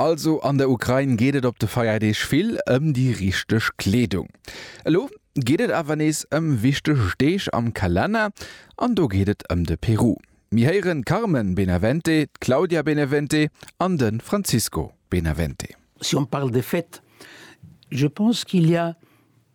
Also an der Ukrain geet et op de Feierdeeg vill ëm déi richteg Kleedung. Elo geet et awer nees ëm wichteg Deeg am Kalenner an do geet et ëm de Peru. Mir héieren d'Carmen Benavente, d'Claudia Benevente an de Francisco Benavente. Si on parle de fêtes, je pense qu'il y a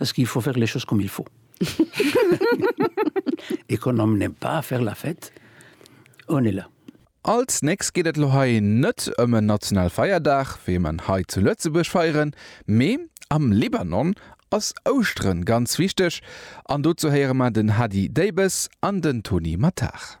Es gi fo faire les choses comme il faut. Et quand on n'aime pas faire la fête, on est là. Als nächst geet et lo hei net ëm en national Feierdag, wéi mer en hei zu Lëtzebuerg feieren, mee am Libanon ass Ouschteren ganz wichteg an dozou héiere mer den Hady Deybes an den Tony Mattard.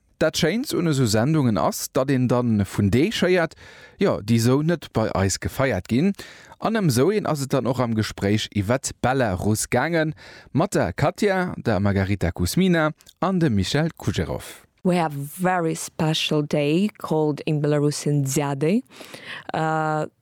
Dat schéint un esou Sendungen ass, datt een dann vun Deeg héiert, jo déi esou net bei eis gefeiert ginn. An ëm esou een ass et dann och am Gespréich iwwert d'Belarus gaange mat der Katja, der Margarita Kuzmina an dem Michel Kujerov. We have a very special day called in Belarusian Dziaday.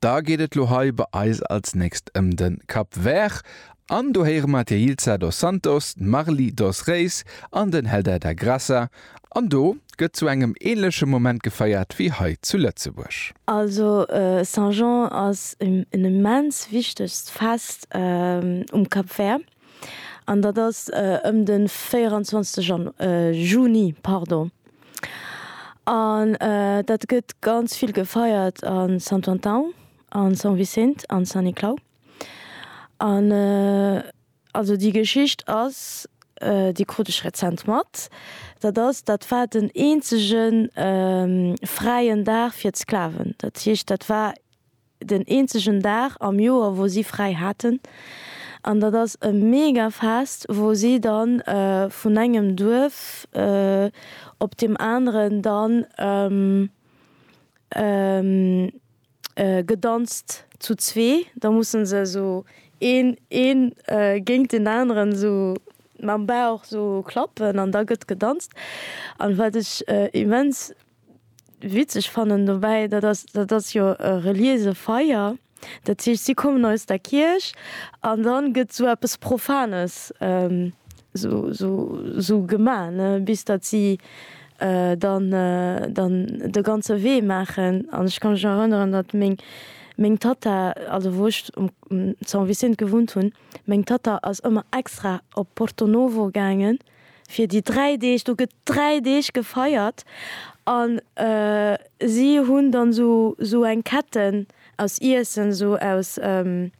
Da geet et lo hei bei eis als nächst ëm de Cap Vert an do héiere mer d'Yeilza dos Santos, d'Marly dos Reis an den Helder da Graça an do gëtt zu engem ähnleche Moment gefeiert wéi hei zu Lëtzebuerg. Also Saint Jean ass en immens wichtegt Fest um Cap Vert. an dat ass ëm de 24 Jan, Juni, pardon. An dat gëtt ganz vill gefeiert a Sant Anton, a Sant Vicent, a Sant Niklau. An also déi Geschicht ass, déi krut ech rezent mat, dat ass, dat war den eenzege fräien Dag fir d'Sklaven. Dat heescht, dat war. den eenzegen Dag am Joer wou si fräi haten an dat ass e mega Fest wou si dann vun engem Duerf op dem aneren dann gedanzt zu zwee, da mussen se esou een een géingt den aneren esou mam Bauch esou klappen an da gëtt gedanzt an wat ech immens witzeg fannen dobäi, dat ass, dat ass jo e reliése Feier, dat heescht si kommen aus der Kierch an da gëtt esou eppes Profanes esou, esou, esou gemaach, ne, bis datt si dann, dann de ganze Wee maachen. An ech ka mech nach erënneren, datt meng, meng Tatta, also wou ech um San Vicent gewunnt hunn, meng Tatta ass ëmmer extra op Porto Novo gaangen, fir déi dräi Deeg, do gëtt dräi Deeg gefeiert an si hunn dann esou esou eng Ketten aus Iessen, esou aus, wéi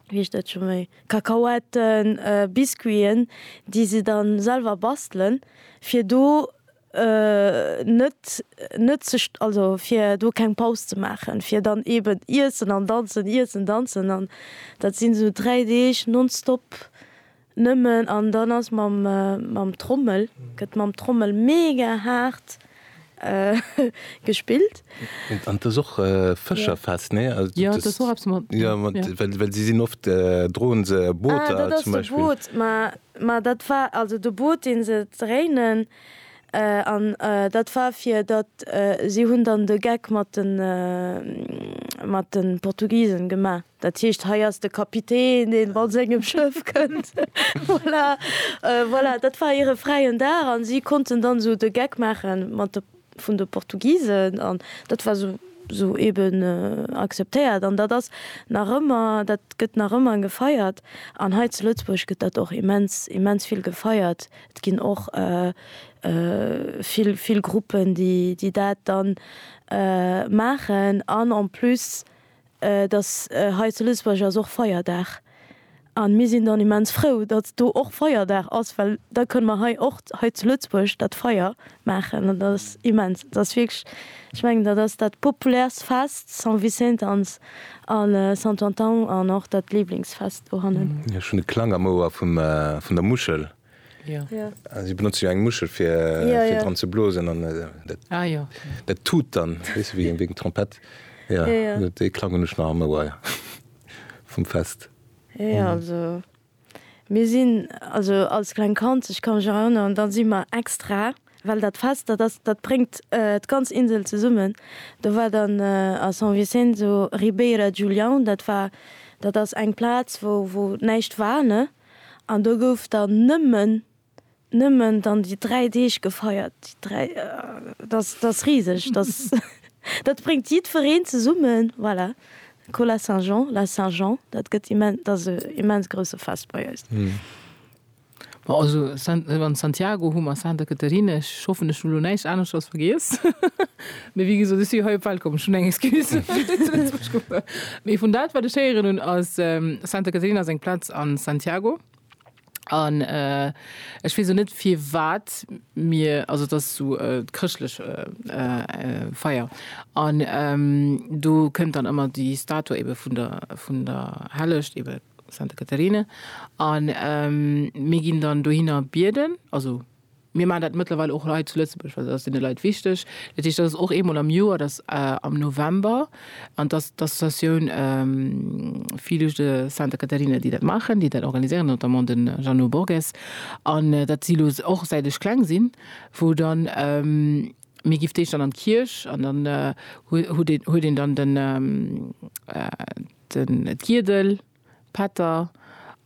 heescht dat scho méi, Kakaoetten, Biscuiten, déi se da selwer bastelen, fir do net net ze, also fir do keng Paus ze maachen, fir dann eeben iessen an danzen, iessen, danzen an dat sinn esou dräi Deeg nonstop Nëmmen an dann ass mam mam Trommel gëtt mam Trommel mega haart gespillt. An t'ass och Fëscherfest nee? Jo et ass och eppes mat jo mat well si sinn oft droen se Booter zum Beispill. Ah dat ass de Boot ma ma dat war also de Boot deen se dréinen an dat war fir datt si hunn dann de Geck mat den mat den Portugisen gemaach. Dat heescht, hei ass de Kapitän, deen mat sengem Schëff kënnt. Voilà, voilà, dat war hire fräien Dag a si konnten dann esou de Geck maache mat de vun de Portugisen an dat war esou esou eeben akzeptéiert. An dat ass nach ëmmer, dat gëtt nach ëmmer gefeiert. An hei zu Lëtzebuerg gëtt dat och immens, immens vill gefeiert. Et ginn och vill, vill Gruppen, déi dat dann maachen an en plus Et ass hei zu Lëtzebuerg ass och Feierdag an mir sinn dann immens frou, datt do och Feierdag ass, well da kënne mer hei och hei zu Lëtzebuerg dat Feier maachen an dat ass immens. Et ass wierklech, ech mengen dat ass dat populäerst Fest, San Vicent ans a Santo Antão an och dat Liblingsfest dohannen. Ech hunn e Klang am Ouer vum vun der Muschel. Si benotze jo eng Muschel fir dran ze blosen an dat tut dann wéi eng Trompett. Dee Klang hunn ech nach am Ouer vum Fest. Jo also mir sinn also als kleng Kand, ech ka mech erënneren, da si mer extra, well dat Fest dat ass, dat bréngt d'ganz Insel zesummen, do war dann a San Vicenzo Ribeira Julião, dat war, dat ass eng Plaz wou näischt war ne. An do gouf dann nëmmen, nëmmen dann déi dräi Deeg gefeiert. Déi dräi, dat, dat ass riseg, dat, dat bréngt jiddwereen zesummen, voilà. Cola Saint-Jean, la Saint-Jean, dat gëtt immen, dat ass e immens grousse Fest bei eis. Bon, also San, wann Santiago hu mer, Santa Catarina, ech hoffen ech hunn elo näischt aneschters vergiess. Mee wéi gesot, ech si hei op d'Welt komm, ech hunn eng Excuse, fir zu Lëtzebuerg ze wunnen. Mee vun dat, wat ech héieren hunn, ass Santa Caterina seng Plaz a Santiago. An ech weess och net, firwat mir, also et ass esou e chrëschtlech Feier. An do kënnt dann ëmmer déi Statue ebe vun der, vun der Hellecht, ebe Santa Caterina. A mir ginn dann dohinner bieden, also. Mir maachen dat mëttlerweil och hei zu Lëtzebuerg, well dat ass deene Leit wichteg. Dat heescht, dat ass och eemol am Joer, dat ass am November. An dat ass d'Associatioun Filhos de Santa Catarina, déi dat maachen, déi dat organiséieren, notamment de Jeannot Borges. An dat si lo och, säit ech kleng sinn, wou dann, mir giff d'Eech dann an d'Kierch an dann huet een dann den, d'Giedel. Pätter,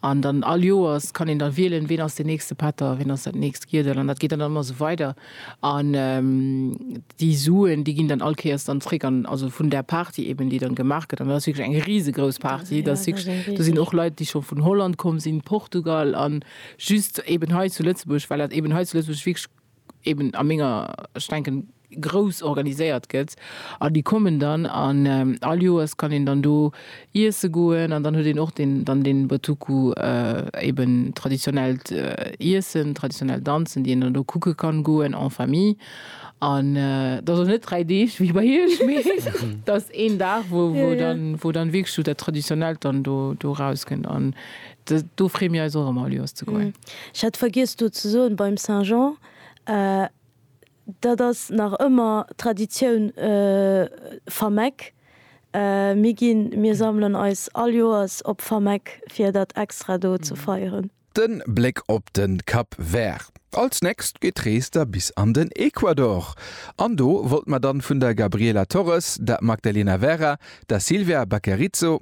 an dann all Joers kann een dann wielen, ween ass deen nächste Pätter, ween ass dat nächst Giedel, an dat geet dann ëmmer esou weider. An déi Suen, déi ginn dann all Kéiers dann zréck an, also vun där Party eben, déi dann gemaach gëtt, an dat ass wierklech eng risegrouss Party, dat ass wierklech, do sinn och Leit, déi scho vun Holland komm sinn, Portugal, an just eben hei zu Lëtzebuerg, well dat eben hei zu Lëtzebuerg wierklech eben a menger, ech denken, grouss organiséiert gëtt an déi kommen dann an all Joers kann een dann do iesse goen an dann huet een och den dann den Botuku eben traditionellt Iessen, traditionell Danzen, déi een dann do kucke kann goen en famille an dat ass och net 3 Deeg wéi bei iech, mee dat ass een Dag wou dann wou dann wierklech esou dat Traditionellt dann do do erauskennt an Do free mir eis och emmer Lioz ze goen. Ech hat vergiess do ze soen beim Saint Jean, dat ass nach ëmmer Traditioun Fameck. Mir ginn, mir sammelen eis all Joers op Fameck fir dat extra do ze feieren. Den Bléck op den Cap Vert. Als nächst geet d'Rees da bis an den Ecuador. An do wollt mer dann vun der Gabriela Torres, der Magdalena Vera, der Silvia Baquerizo,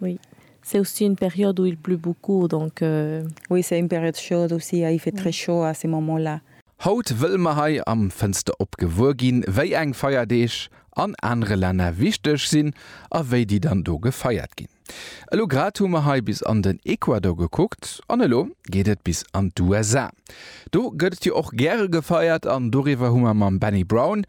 Oui, c'est aussi une période où il pleut beaucoup, donc. Oui, c'est une période chaude aussi, il fait très chaud à ces moments là. Haut wëlle mer hei am Fënster op gewuer ginn, wéi eng Feierdeeg an anere Länner wichteg sinn a wéi déi dann do gefeiert ginn. Elo grad hu mer hei bis an den Ecuador gekuckt an elo geet et bis an d'USA. Do gëtt et jo och gäre gefeiert an doriwwer hu mer mam Benny Brown,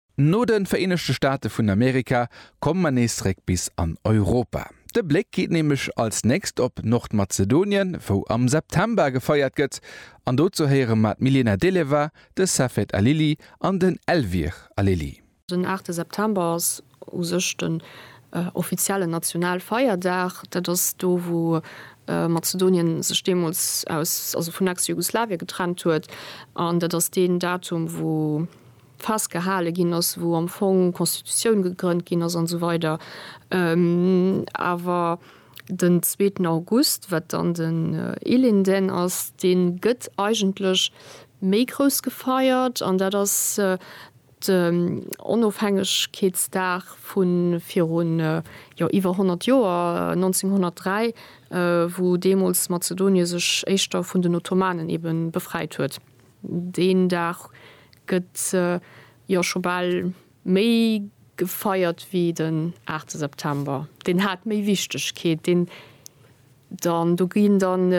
No de Vereenegte Staate vun Amerika komme mer nees zeréck bis an Europa. De Bléck geet nämlech als nächst op Nordmazedonien, wou am September gefeiert gëtt. An dozou héiere mer d'Milena Deleva, de Safet Alili an den Elvir Alili. Den aachte September ass u sech den offiziellen Nationalfeierdag. Dat ass do, wou Mazedonien sech deemools aus, also vun Ex-Jugoslawien getrennt huet. An dat ass deen Datum, wou festgehale ginn ass, wou am Fong d'Constitutioun gegrënnt ginn ass an esou weider awer den zweeten August, wat dann den Ilinden ass, dee gëtt eigentlech méi grouss gefeiert an dat ass den Onofhängegkeetsdag vu virun jo iwwer 100 Joer, 1903, wou deemools Mazedonie sech éischter vun den Ottomanen eben befreit huet. Deen Dag gëtt jo scho bal méi gefeiert wéi den 8 September. Deen hat méi Wichtegkeet. Deen dann, do ginn dann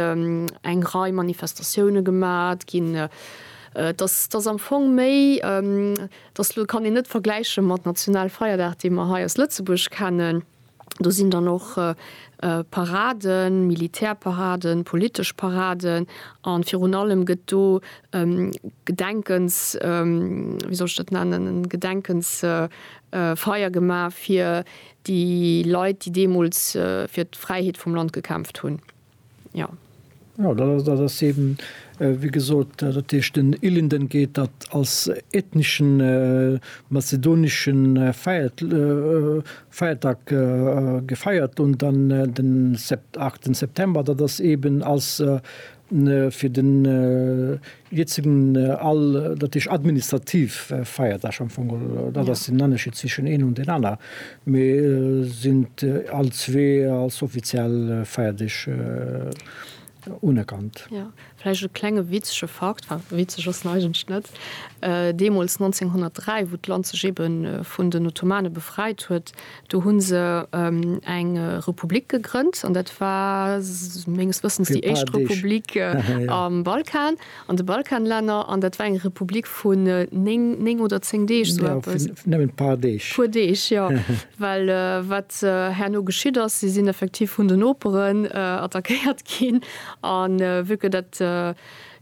eng Rei Manifestatioune gemat ginn. Et ass, et ass am Fong méi, et ass, elo kann een net vergläiche mat Nationalfeierdag, dee mer hei aus Lëtzebuerg kennen. Do sinn dann och Paraden, Militärparaden, politesch Paraden a virun allem gëtt do Gedenkens, wéi soll ech dat nennen, en Gedenkensfeier gemaach fir déi Leit, déi deemools fir d'Fräiheet vum Land gekämpft hunn. Jo. Jo, dat ass, dat ass eeben, wéi gesot, dat heescht den Ilinden geet dat als ethneschen mazedonesche Feiert, Feiertag gefeiert un, dann den Sept, 8 September, dat ass eeben als fir den Jiët sin all, datt heescht administrativ Feierdag am Fong, datt ass den Ennerscheed zwischen een an deen aner, mee sin all zwee als offiziell Feierdeeg unerkannt. Jo, vläicht e klenge witzege Fakt, enfin witzeg ass en eigentlech net, deemols 1903, wou d'Land sech eben vun den Ottomane befreit huet, Do hunn se eng Republik gegrënnt an dat war menges Wëssens déi éischt Republik am Balkan, an de Balkanlänner, an dat war eng Republik vun néng, néng oder zéng Deeg, sou eppes. Nëmmen d'paar Deeg. Puer Deeg, jo. Well wat herno geschitt ass, si sinn effektiv vun den Noperen attackéiert ginn, a vu que dat,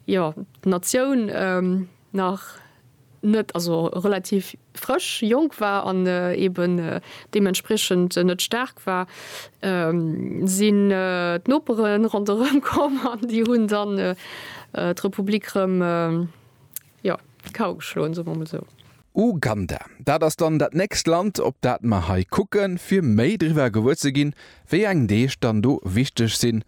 jo, d'Natioun, nach net, also relativ frësch, jonk war an eben deementspriechend net staark war, sinn d'Nopere ronderëm komm an déi hunn dann d'Republik rëm, jo, d'Kau geschloen, soe mer emol esou. Uganda, dat ass dann dat nächst Land, op dat mer hei kucken, fir méi driwwer gewuer ze ginn, wéi eng Deeg dann do wichteg sinn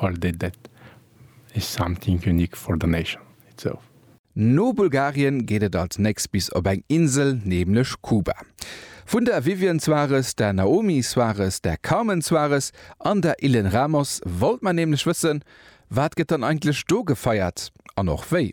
All dét dét is something unique for the nation itself. No Bulgarien geet et als nächst bis op eng Insel, nämlech Kuba. Vun der Vivian Suarez, der Naomi Suarez, der Carmen Suarez an der Ilen Ramos wollt mer nämlech wëssen, Wat gëtt dann eigentlech do gefeiert an och wéi?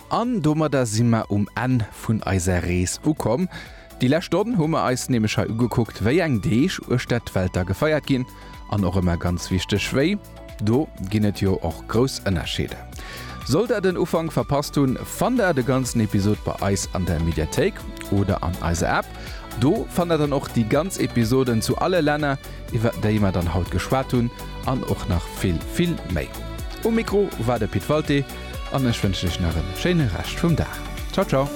An domadder si mer um Enn vun eiser Rees ukomm. Déi lescht Stonn hu mer eis nämlech hei ugekuckt, wéi eng Deeg uechter d'Welt da gefeiert ginn, an och ëmmer ganz wichteg, wéi. Do ginn et jo och grouss Ënnerscheeder. Sollt der den Ufank verpasst hunn, fannt der de ganzen Episod bei eis an der Mediathéik oder an eiser App. Do fannt der dann och déi ganz Episoden zu alle Länner, iwwer déi mer dann haut geschwat hunn, an och nach vill, vill méi. Um Mikro war de Pit Walté. an ech wënschen iech nach en schéine Rescht vum Dag. Ciao ciao.